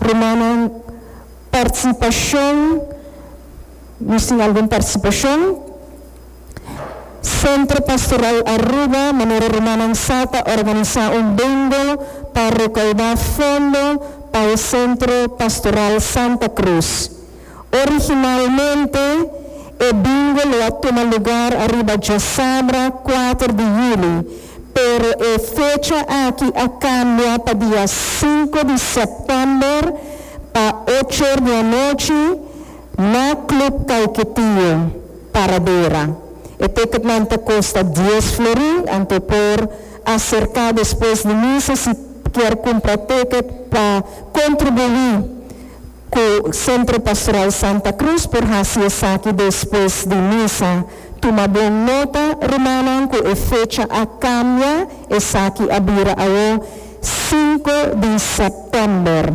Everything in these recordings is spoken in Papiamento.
Rumannan participacion Nos tin algun participacion Centro Pastoral Aruba manera rumannan sa ta organisa un bingo pa recauda fondo pa e Centro Pastoral Santa Cruz. Originalmente e bingo lo a tuma lugar ariba djasabra kuater di juli, pero e fecha aki a kambia pa dia sinku di sèptèmber pa ochor di anochi na Club Caiquetío, Paradera. E ticketnan ta kosta dies florin, anto por aserká despues di misa si kier kumpra ticket pa kontribuí. Cu Centro Pastoral Santa Cruz por haci esaki despues di misa. Tuma bon nota, rumannan, cu e fecha a cambia, esaki a bira awo sinku di september.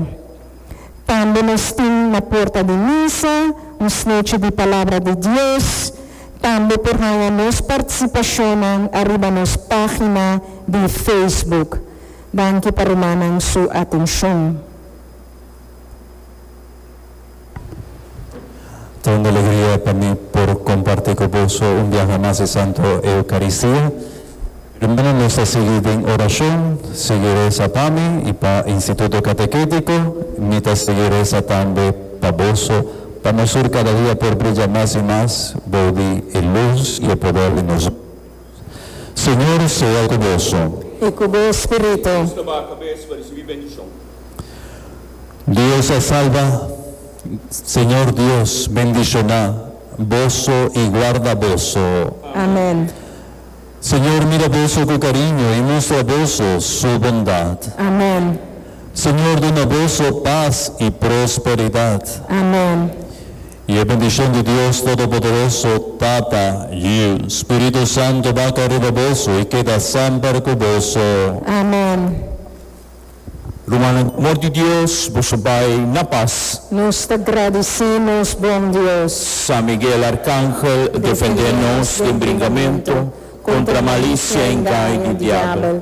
Tambe nos tin na puerta di misa un snechi di Palabra di Dios. Tambe por haya nos participacionnan ariba nos pagina di Facebook. Danki pa rumannan su atencion. Ta un alegria pa mi por kompartí ku boso un biaha mas e Santo Eukaristia. Primero nos ta sigui den orashon, sigui resa pa mi i pa Instituto Katekítiko. Mi ta sigui resa tambe pa boso, pa nos sur kada dia por brilla mas i mas bou di e lus i e poder di nos. Señor sea cu boso. I cu bo spirito. Dios a salba. Señor Dios bendiciona boso i guarda boso. Amen. Señor mira boso cu cariño i mustra boso su bondad. Amen. Señor duna boso paz i prosperidad. Amen. I e bendishon di Dios Todopoderoso, Tata, Yiu, Spiritu Santu baka riba boso i keda semper ku boso. Amen. Rumannan ku amor di Dios, boso bai na pas. Nos ta gradisí nos bon Dios. San Miguel Arkangel, defendé nos den bringamentu kontra malisia i engaño di diabel.